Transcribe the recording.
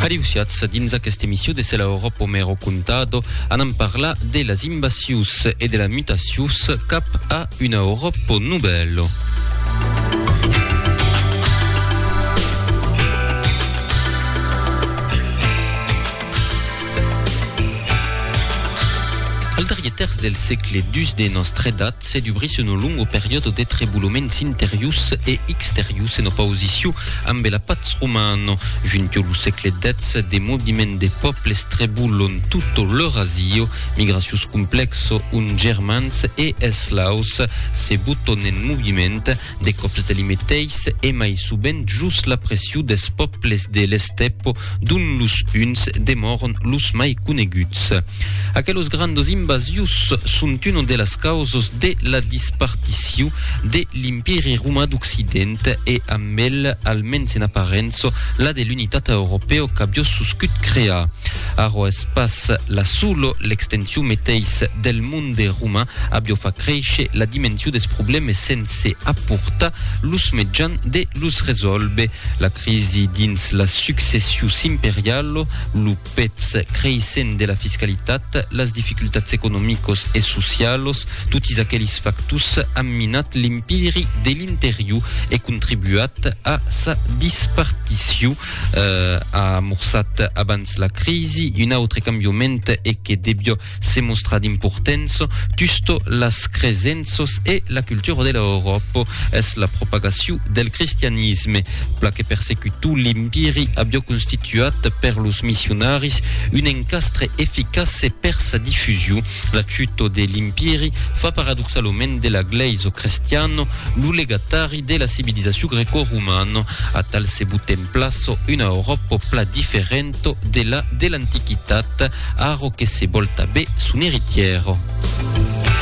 Adeusiatz, dins aquesta emission de Cela Europe Homero Contado anam parlar de las invasions e de la mutacions cap a una Europe nouvelle. Al darrier tèrç del sègle xii de nòstra edat se dubrís una longa periòda de treboloments interiors e exteriors en opausicion ambe la patz romana. Juntiu lo sègle xix, de moviments de pòbles trebolon tota l'Eurasia, migracions complèxa ont germans e eslaus se boton en moviment, De còps de li meteis e mai sovent jos la pression des pòbles de l'estèpo, dont los Huns demòron los mai coneguts. Aquelos grandos invasius son una de las causos de la dispartició de l'Impèri Romà d'Occident e amb el, almens en aparença, la de l'unitat europèo qu'avió soscut crear. Ara es pas la sola l'extension meteis del mond de Roma avió fa créisher la dimension des problèmes sense aportar los mejans de los resòlver. La crisi dins las successius imperialo, lo pètz creissent de la fiscalitat, las dificultats economicos e socialos, totis aquelis factors an minat l'Empiri de l'Interior e contribuat a sa dispartició. A amorçat abans la crisi un autre cambioment e que devió Se mostra d'importença tusto las cresenças e la cultura de l'Euròpa es la propagaciu del cristianisme. Pla que persecutu l'Impiri avió constituat per los missionaris un encastre eficace per sa difusiu. La chuto de l'Impiri fa paradoxalament de la Glèisa crestiana lo legatari de la civilizaciu greco-romana. Atal se butèm plaça una Euròpa pla diferenta Egitto de la de l'Antiquitat, aro que se vòl tabé son eritièro.